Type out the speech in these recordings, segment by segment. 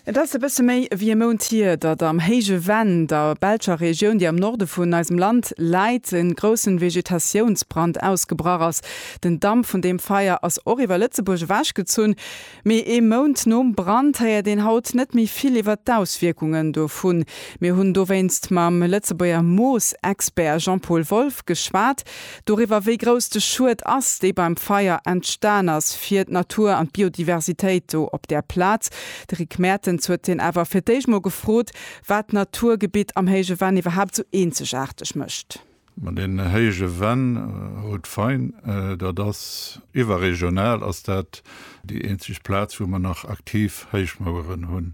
Et ass e bësse méi ewéi e Mount hier, datt am héije Venn, der belscher Regioun, déi am Norde vun eisem Land läit, e grousse Vegetatiounsbrand ausgebrach ass. Den Damp vun deem Feier ass och iwwer Lëtzebuerg ewechgezunn. Mee ee Mount nom Brand héiert een haut net méi vill iwwer d'Auswierkungen dovun. Mir hunn dowéinst mam Lëtzebuerger Moosexpert Jean-Paul Wolff geschwat. Doriwwer, wéi grouss de Schued ass, dee beim Feier entstan ass fir d'Natur an d'Biodiversitéit do op där Plaz. De Rick Mertens huet hien awer fir d'éischt mol gefrot, wat d'Naturgebitt am Héije Venn iwwerhaapt esou eenzegaarteg mécht. Ma den Héije Venn haut d'Fein, dat ass iwwerregional ass dat déi eenzeg Plaz, wou mer nach aktiv Héichmaueren hunn.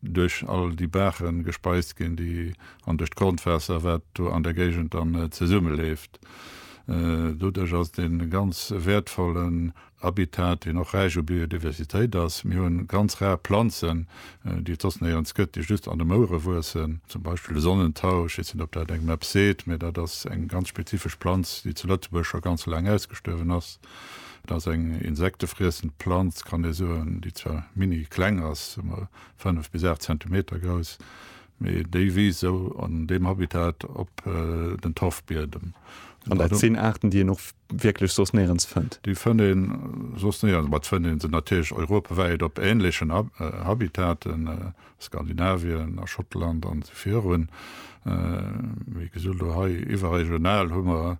duerch all déi Baachen gespeist ginn, déi an duerch d'Grondwaasser, wat do an der Géigend dann zesummeléft. Doduerch ass et ee ganz wäertvollen Habitat, deen och räich u Biodiversitéit ass. Mir hunn ganz rar Planzen, déi et soss néierens gëtt, déi just an de Mouere wuessen, zum Beispill de Sonnentau, ech weess net, ob dat engem eppes seet, mä dat ass eng ganz spezifesch Planz, déi zu Lëtzebuerg scho ganz laang ausgestuerwen ass. Et ass eng insektefriessend Planz, kann ee soen, déi zwar mini kleng ass, 5 bis 8 Zentimeter grouss, mee déi wiisst sou an deem Habitat op den Torfbiedem. An dat sinn Aarten, déi een och wierklech soss néierens fënnt? Déi fënnt ee soss néierens, ma et fënnt ee se natierlech europawäit op änlechen Habitaten, Skandinavien, a Schottland an virun. Wéi gesot, elo hei iwwerregional hu mer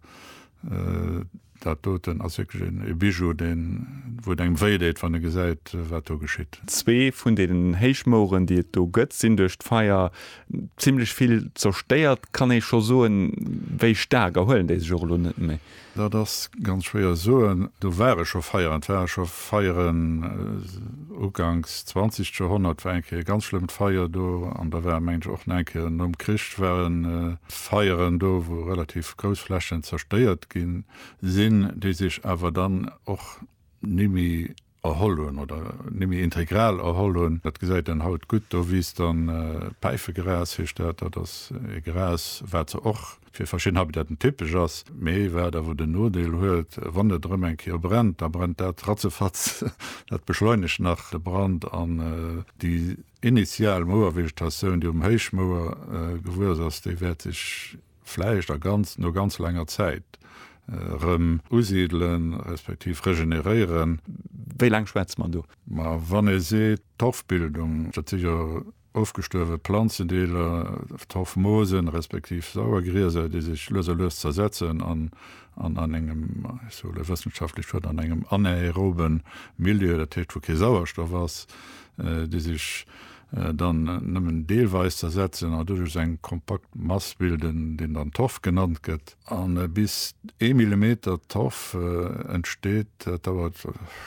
Dat doten ass wierklech en Bijou, deen, wou et engem wéi deet, wann e gesäit, wat do geschitt. Zwee vun deenen Héichmoueren, déi et do gëtt, sinn duerch d'Feier zimlech vill zerstéiert. Kann ee scho soen, wéi staark erhuelen déi sech och elo net méi? Dat ass ganz schwéier soen. Do ware scho Feieren, et ware scho Feieren, uganks 20. Joerhonnert war eng Kéier e ganz schlëmmt Feier do an da war, mengen ech, och nach eng Kéier nom Krich ware Feieren do, wou relativ grouss Flächen zerstéiert gi sinn, déi sech awer dann och nimme erholl hunn oder nimme integral erholl hunn. Dat gesäit een haut gutt, do wiisst dann Päifegras, heescht dat. Dat ass e Gras, wat se och fir verschidden Habitaten typesch ass, mee wat awer den Nodeel huet, wann et erëm eng Kéier brennt, da brennt dat ratzefatz, dat beschleunegt nach de Brand an déi initial Mouervegetatioun, déi um Héichmouer gewuess ass, déi wäert sech vläicht a ganz, no ganz laanger Zäit erëm usidelen, respektiv regeneréieren. Wéi laang schwätze mer do? Ma wann ee seet, d'Torfbildung, dat si jo Ofgestuerwe Planzendeeler, Torfmoosen, respektiv Sauergrieser, déi sech lues a lues zersetzen an an an engem, ech soe e wëssenschaftlech Wuert, an engem anaerobe Milieu, dat heescht wou kee Sauerstoff ass, déi sech dann nëmmen deelweis zersetzen an doduerch eng kompakt Mass bilden, deen dann Torf genannt gëtt. A bis ee Millimeter Torf entsteet, dat dauert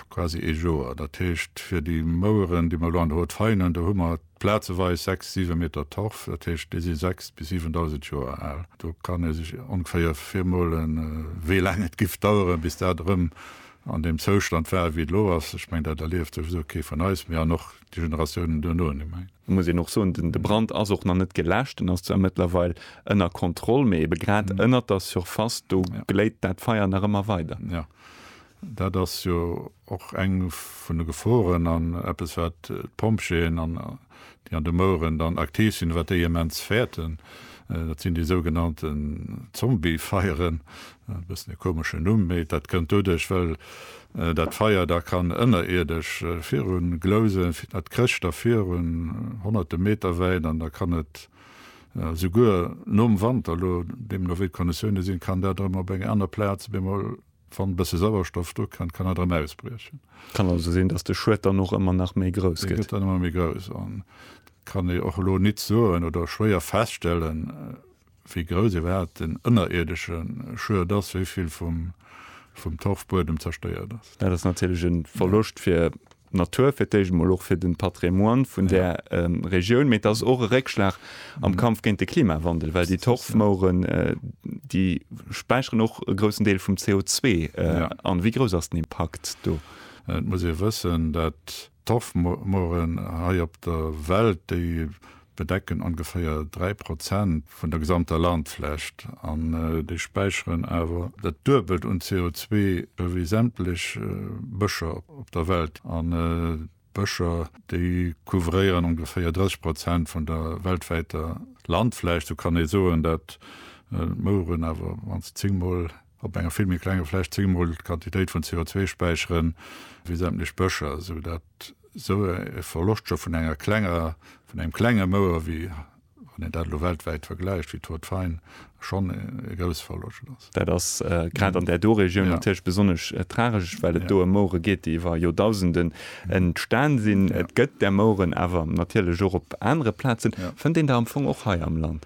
quasi ee Joer. Dat heescht, fir déi Moueren, déi mer elo an der Haute Faïne hunn, do hu mer plazeweis sechs, siwe Meter Torf. Dat heescht, déi si sechs bis siwendausend Joer al. Do kann ee sech ongeféier virmolen, wéi laang et giff daueren, bis dat erëm an deem Zoustand war, wéi et elo ass. Ech mengen, dat erlieft souwisou kee vun eis méi an och déi Generatiounen duerno net méi. Et muss een och soen, de Brand ass och nach net geläscht. En ass zwar mëttlerweil ënner Kontroll, mee ebe grad ënnert der Surface, do gléit dat Feier nach ëmmer weider. Jo, dat ass jo och eng vun de Geforen an eppes, wat d'Pompjeeën, déi an de Moueren dann aktiv sinn, wat déi immens fäerten. Dat sinn déi sougenannten Zombie-Feieren, E bëssen e komeschen Numm, mee dat kënnt doduerch, well dat Feier da kann ënnerierdesch viru glousen. Dat krécht da viru honnerte Meter wäit an da kann et esouguer nom Wanter, elo deemno wéi d'Konditioune sinn, kann dat erëm op enger aner Plaz op eemol, wann e bësse Sauerstoff dru kënnt, kann dat erëm ausbriechen. Et kann also sinn, datt de Schued dann och ëmmer nach méi grouss gëtt. E gëtt dann ëmmer méi grouss an et kann ee och elo nit soen oder schwéier feststellen, Wéi grouss iwwerhaapt den ënnerierdesche Schued ass, wéi vill vum Torfbuedem zerstéiert ass. Dat ass natierlech e Verloscht fir d'Natur, fir d'éischt emol och fir de Patrimoine vun där Regioun, mee et ass och e Réckschlag am Kampf géint de Klimawandel, well déi Torfmoueren, déi späicheren och e groussen Deel vum CO2 an. Wéi grouss ass den Impakt do? Et muss ee wëssen, datt. D'Torfmooren hei op der Welt, déi bedecken ongeféier 3 Prozent vun der gesamter Landflächt an déi späicheren awer dat Duebelt un CO2 ewéi sämtlech Bëscher op der Welt. An d'Bëscher, déi couvréieren ongeféier 30 Prozent vun der weltwäiter Landfläch. Sou kann ee soen, dat d'Mouren awer wann se 10 mol. op enger vill méi klenger Fläch zeeëmol d'Quantitéit vun CO2 späichere wéi sämtlech Bëscher, esou datt esou e Verloscht scho vun enger klenger, vun engem klenge Mouer, wéi wann een dat elo weltwäit vergläicht, wéi d'Haute Fayn, schonn e grousse Verloscht ass. Dat ass grad an där do Regioun natierlech besonnesch tragesch, well et do ëm Mouere geet, déi iwwer Joerdausenden entstan sinn. Et gëtt där Moueren awer natierlech och op anere Plazen. Fënnt een der am Fong och hei am Land?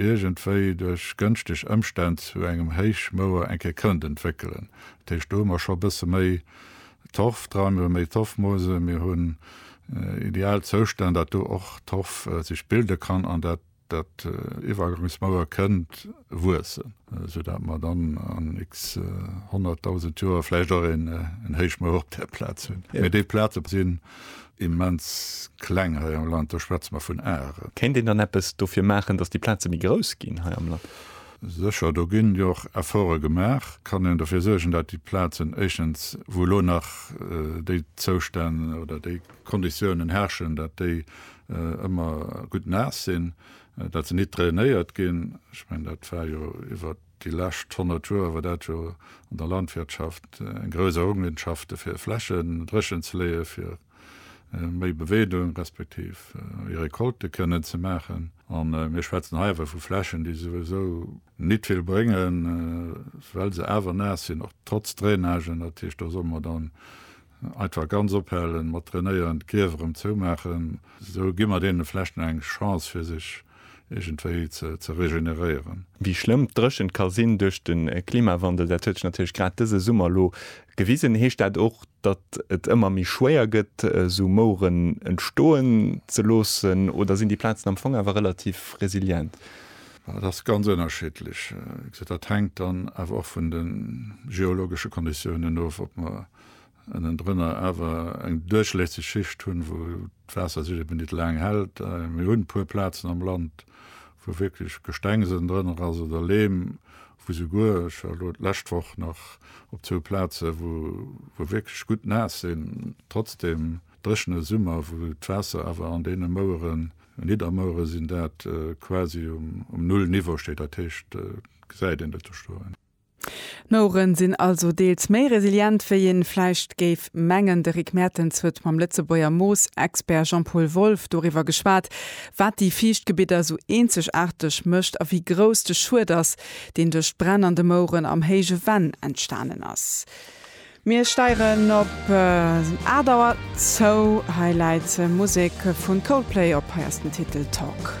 iergendwéi duerch gënschteg Ëmstänn zu engem Héichmouer eng Kéier kënnt entwéckelen. Dat heescht, do hu mer scho e bësse méi Torf dran, mir hu méi Torfmoose, mir hunn ideal Zoustänn, datt do och Torf sech bilde kann an dat dat Iwwergangsmouer kënnt wuessen, soudatt mer dann an x Honnertdausend Joer vläicht och en Héichmouer op där Plaz hunn. Mee déi Plaze sinn Immens kleng hei am Land, do schwätze mer vun Are. Kéint een dann eppes dofir maachen, datt déi Plaze méi grouss ginn hei am Land? Sécher, do ginn jo och Efforte gemaach. Kann een dofir suergen, datt déi Plazen éischtens, wou elo nach déi Zoustänn oder déi Konditiounen herrschen, datt déi ëmmer gutt naass sinn, datt se nit drainéiert ginn? Ech mengen, dat war jo iwwert. Déi lescht 100 Joer war dat jo an der Landwirtschaft eng grouss Errungenschaft, de fir Flächen dréchen ze leeën, fir méi Beweedung respektiv méi Recolte kënnen ze maachen. A mir schwätzen hei awer vu Flächen, déi souwisou nit vill bréngen, well se awer naass sinn, och trotz Drainage. Dat heescht, do solle mer dann Einfach ganz ophalen mat trainéieren, d'Grief erëm zoumaachen, esou gi mer deene vlächcht nach eng Chance fir sech iergendwéi ze regeneréieren. Wéi schlëmm d'Dréchent ka sinn duerch de Klimawandel, dat huet sech natierlech grad dëse Summer elo gewisen. Heescht dat och, datt et ëmmer méi schwéier gëtt esou Moueren entstoen ze loossen oder sinn déi Plazen am Fong awer relativ resilient? Dat ass ganz ënnerschiddlech. Dat hänkt dann awer och vun de geologesche Konditiounen of, ob mer ënnendrënner awer eng duerchlässeg Schicht hunn, wou d'Waasser sech eben nit laang hält. Mir hunn e puer Plazen am Land, wou wierklech Gestengs ënnendrënner ass oder Leem, wou souguer, ech war elo d'lescht Woch nach op zwou Plazen, wou wou wierklech gutt naass sinn, trotzdem dréchene Summer, wou d'Waasser awer an deene Moueren, Niddermouere sinn dat, quasi um Null-Niveau steet. Dat heescht, et gesäit een et do stoen. D'Moueren sinn also deels méi resilient wéi een vläicht géif mengen. De Rick Mertens huet mam Lëtzebuerger Moosexpert Jean-Paul Wolff doriwwer geschwat, wat déi Fiichtgebidder sou eenzegaarteg mécht a wéi grouss de Schued ass, deen duerch d'Bränn an de Moueren am héije Venn entstanen ass. Mir steieren op 8 Auer zou. Hei läit Musek vu Coldplay op, hei ass den Titel Talk.